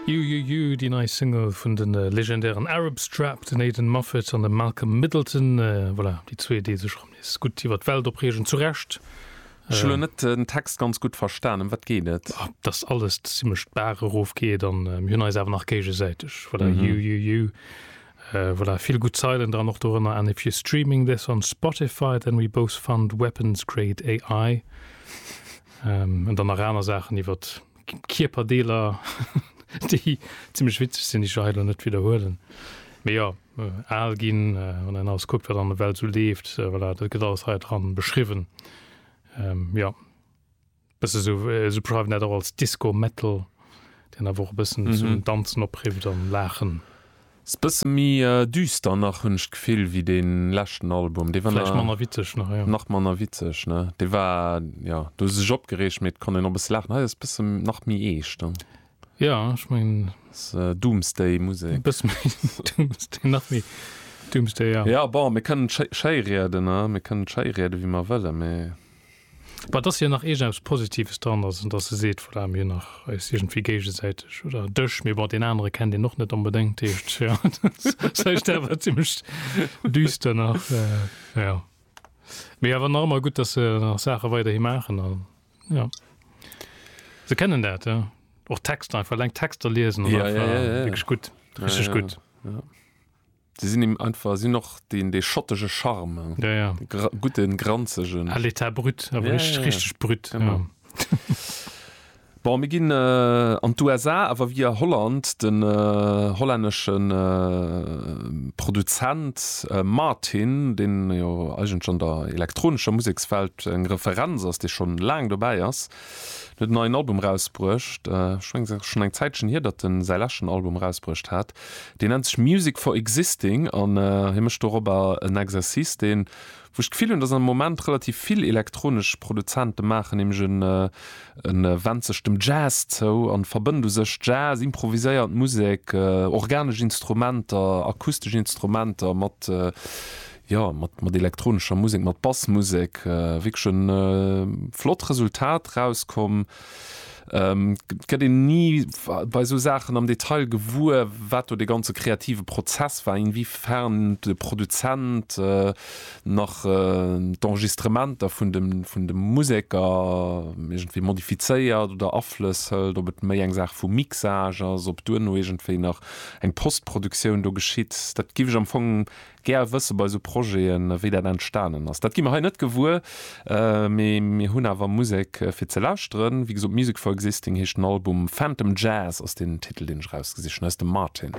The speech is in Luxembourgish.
You You You, déi nei Single vun de legendären Arab Strap, den Aidan Moffat an dem Malcolm Middleton. Voilà, déi zwee, déi sech erëm nees gutt iwwert d'Welt opreegen, zu Recht. Ech hu lo net den Text ganz gutt verstan, ëm wat geet et? Dass alles zimlech d'Baach erof geet an mir hunn eis awer nach géigesäiteg. Voilà, You You You. Voilà, vill gutt Zeilen dran, och dorënner, And if you're streaming this on Spotify, then we both fund weapons-grade AI. An dann nach aner Saachen iwwer Kierperdeeler, déi zimlech witzeg sinn, déi ech jo hei elo net widderhuelen. Mee jo, al ginn, wann een alles kuckt, wat an der Welt esou leeft, voilà, dat gëtt alles hei dran beschriwwen. Jo, bësse sou, si beschreiwen dat och als Disco-Metal, deen awer och e bëssen zum Danzen oprifft an Laachen. S, Bësse méi düster nach hunn ech d'Gefill wéi dee leschten Album. Dee war nach manner witzeg, nach, jo. Nach manner witzeg, ne? Dee war, jo, do hu se sech opgereegt, mee et konnt een och e bësse laachen. Hei ass bësse nach méi eescht, ne? Jo, ech mengen. S, Doomsday Musek. Bësse méi Doomsday, nach méi Doomsday, jo. Jo, bon, mir kënnen et schéi, schéi rieden, ne? Mir kënnen et schéi rieden, wéi mer wëllen, mee. Mä et ass jo nach iergendeppes Positives dran, also datt e seet, voilà, mir hunn nach eis iergendwéi géigesäiteg, oder dech, mee bon, deen anere kennt een och net onbedéngt, dat heescht, jo, dat heescht, dat war zimmlech düster nach, jo. Mee awer nach ëmmer gutt, datt se nach Saache weiderhi maachen a jo, se kennen dat, jo. Och Texter, einfach eleng d'Texter liesen, ass einfach wierklech gutt, richteg gutt. Sie sinn im einfach sinn och den dee schottege Charme ja, ja. Gra guten granzegen à l'état brut aber ja, richtig, ja, ja. richtig brut genau. Ja. Bon, mir ginn äh, an d'USA awer wie a Holland den äh, hollänneschen äh, Produzent äh, Martin, den jo ja, eigentlech an der elektronescher Musekswelt eng Referenz ass, dee schon laang dobäi ass, net en neien Album rausbruecht. Äh, schon eng Zäitchen hier, datt den säi läschen Album rausbruecht hat. Deen nennt sech Music for Existing an hie mécht dorobber en Exercice, deen, wou ech d'Gefill hunn, dass am Moment relativ vill elektronesch Produzente maachen, nämlech e wennt sech dem Jazz zou an verbënnt u sech Jazz, improviséiert Musek, organesch Instrumenter, akustesch Instrumenter mat, jo, mat elektronescher Musek, mat Bassmusek. Wierklech e flott Resultat rauskomm. Et gëtt een ni bei esou Saachen am Detail gewuer, wat do de ganze kreative Prozess war, inwiefern de Produzent nach d'Enregistrementer vun de Museker iergendwéi modifizéiert oder Aflëss hëlt, ob et méi eng Saach vum Mixage ass, ob duerno iergendwéi nach eng Postproduktioun do geschitt. Dat géif ech am Fong Gär wësse bei sou Projeten, wéi dat entstanen ass. Dat gi mer hei net gewuer, mee mir hunn awer Musek fir ze lauschteren. Wéi gesot, Music for Existing heescht den Album. Phantom Jazz ass den Titel, deen ech erausgesicht hunn, aus dem Martin.